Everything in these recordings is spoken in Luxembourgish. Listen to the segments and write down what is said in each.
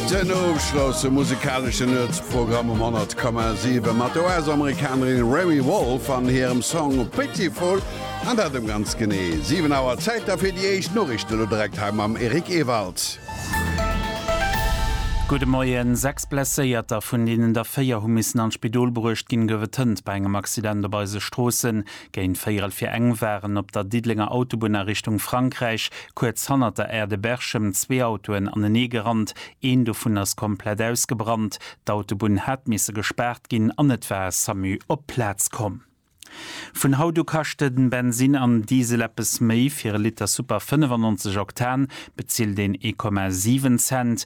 Den ofschlosse musekaleschen Nuetsprogramm um 100,7 mat der US-Amerikanerin Remi Wolf an hirem Song Pitiful, an dat um ganz genee 7 Auer. Zäit da fir déi éischt Noriichten, elo direkt hei mam Eric Ewald. Gudde Moien. Sechs Blesséierter, vun deenen der véier hu missen an d'Spidol bruecht ginn, gouf et hënt bei engem Accident op eise Stroossen. Géint véierel fir eng waren op der Diddelenger Autobunn a Richtung Frankräich kuerz hannert der Aire de Berchem zwee Autoen anenee gerannt. Een dovun ass komplett ausgebrannt. D'Autobunn hat misse gespaart ginn an et war e Samu op d'Plaz komm. Vun haut u kaschte den Bensin an Diesel eppes méi. Fir e Liter Super 95 Oktan bezilt een ee Komma 7 Cent.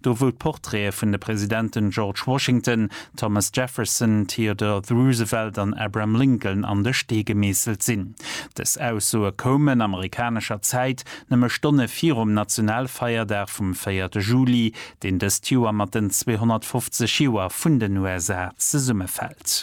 Do wou d'Portraite vun de Presidenten George Washington, Thomas Jefferson, Theodore Roosevelt an Abraham Lincoln an de Stee gemeesselt sinn. Dës Aussoe koumen, amerikanescher Zäit, nëmme Stonne virum Nationalfeierdag vum véierte Juli, deen dëst Joer mat den 250 Joer vun den USA zesummefält.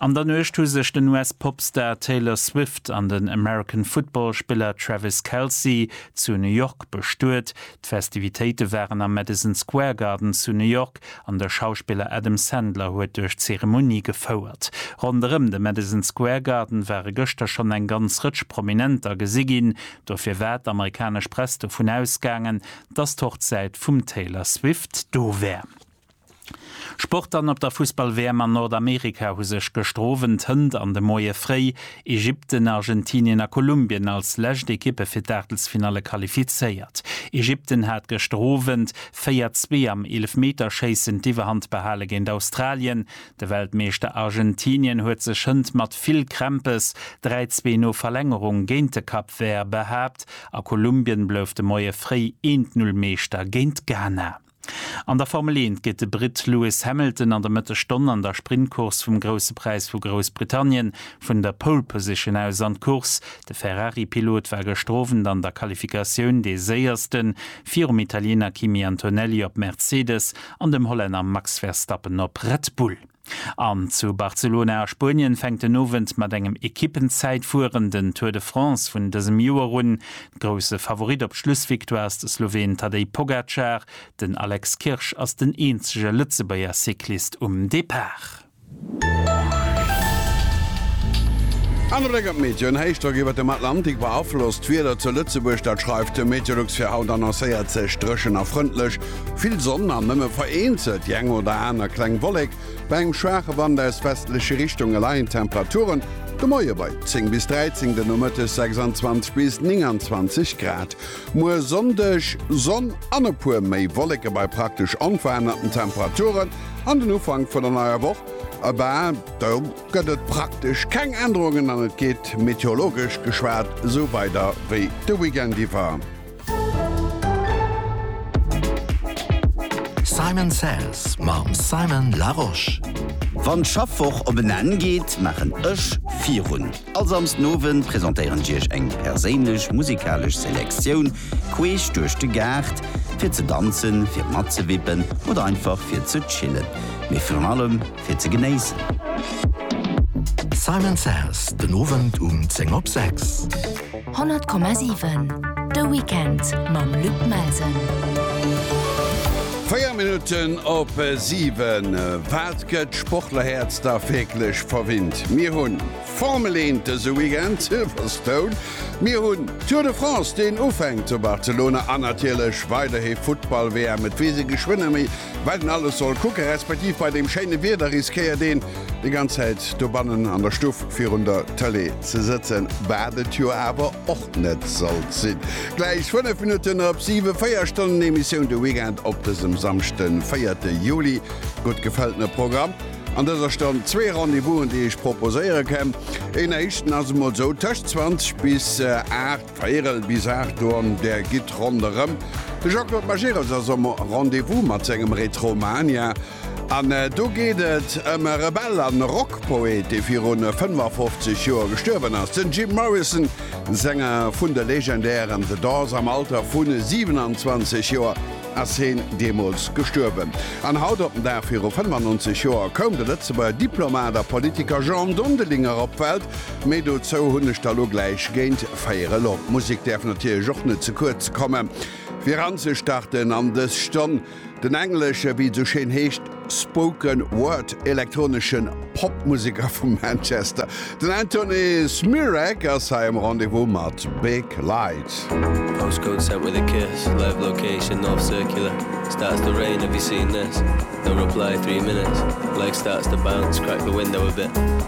An der Nuecht hu sech den US-Popstar Taylor Swift an den American Football-Spiller Travis Kelce zu New York bestuet. D'Festivitéite waren am Madison Square Garden zu New York an de Schauspiller Adam Sandler huet duerch d'Zeremonie gefouert. Ronderëm de Madison Square Garden ware gëschter schonn eng ganz Rëtsch Prominenter gesi ginn. Dofir war d'amerikanesch Press dovun ausgaangen, dass d'Hochzäit vum Taylor Swift do wär. Sportern op der Fussball-WM an Nordamerika hu sech gëschter Owend Hënt an de Moie fréi. Ägypten, Argentinien a Kolumbien als lescht Ekippe fir d'Aachtelsfinalle qualifizéiert. Ägypten hat gëschter Owend 4, 2 am Eelefmeterschéissen d'Iwwerhand behale géint Australien. De Weltmeeschter Argentinien huet sech Hënt mat vill Krämpes 3, 2 no Verlängerung géint de Cap Vert behaapt a Kolumbien blouf de Moie fréi 1, 0 Meeschter géint Ghana. An der Formel 1 geet de Britt Lewis Hamilton an der Mëtteg Stonn an der Sprintcourse vum Grousse Präis vu Groussbritannien vun der Pole Position aus an d'Course. De Ferrari-Pilot war gëschter Owend an der Qualifikatioun dee Séiersten, virum Italiener Kimi Antonelli op Mercedes an dem Hollänner Max Verstappen op Red Bull. An zu Barcelona a Spuenien fänkt den Owend mat engem Ekippenzäitfueren den Tour de France vun dësem Joer un. Grousse Favorit op d'Schlussvictoire ass de Sloween Tadej Pogacar. Den Alex Kirsch ass den eenzege Lëtzebuerger Cyclist um Depart. Anere Bléck op d'Meteoen, Héichdrock iwwert dem Atlantik beaflosst d'Wieder zu Lëtzebuerg, dat schreift de Meteolux fir haut. Annoncéiert sech dréchen a frëndlech. Vill Sonn an nëmme vereenzelt déi eng oder aner kleng Wollek, bei engem schwaache Wand aus westleche Richtunge leien d'Temperaturen de Moie bei 10 bis 13, de Nomëttes 26 bis 29 Grad. Muer Sonndeg Sonn an e puer méi Wolleke bei praktesch onverännerten Temperaturen an den Ufank vun der neier Woch, ebe do gëtt et praktesch keng Ännerungen an et geet meteorologesch geschwat esou weider wéi de Weekend iwwer. Simon Says mam Simon Larosche. Wann d'Schaffwoch op en Enn geet, maachen ech virun. All Samsdenowend presentéieren ech iech eng perséinlech musikalesch Selektioun queesch duerch de Gaart, fir ze danzen, fir matzewippen oder einfach fir ze chillen. Mee virun allem. fir ze genéissen. Simon Says den Owend um 10 op 6. 100,7 De Weekend mam Luc Melsen. 4 Minutten op 7 wat gëtt Sportlerhäerz da wierklech verwinnt? Mir hunn Formel 1 dëse Weekend, Silverstone, mir hunn Tour de France, deen ufänkt zu Barcelona an natierlech weiderhi Futtball-WM. Et weess ee geschwënner méi, Wat een alles soll kucken, respektiv bei deem schéine Wieder riskéiert een déi ganz Zäit dobannen an der Stuff virun der Tëlee ze sëtzen, wat et jo awer och net sollt sinn. Gläich 5 Minutten op 7, 4 Stonnen Emissioun de Weekend op dësem Samschde 4 Juli. Gutt gefëltene Programm an dëser Stonn, zwee Rendez-Vousen déi ech proposéiere kä. Een éischten ass emol sou tëscht 20 bis 8. Veerel bis 8 Auer an der Gitt ronderëm. De Jean-Claude Majerus ass um Rendez-vous mat sengem Retromania an do geet et ëm e Rebell an e Rockpoet, dee virun 55 Joer gestuerwen ass. Den Jim Morrison, Sänger vun de legendären The Doors, am Alter vu 27 Joer ass heen deemools gestuerwen. An haut op den Dag viru 95 Joer koum de Lëtzebuerger Diplomat a Politiker Jean Dondelinger op d'Welt. Méi dozou hunn ech der lo gläich géint véier elo. D'Musek däerf natierlech och net ze kuerz komme fir eranzestarten an dës Stonn. Den englesche, wéi et esou schéin heescht, Spoken Word elektronesche Pop-Museker vu Manchester, den Antony Smyrack ass hei um Rendez-vous mat Big Light.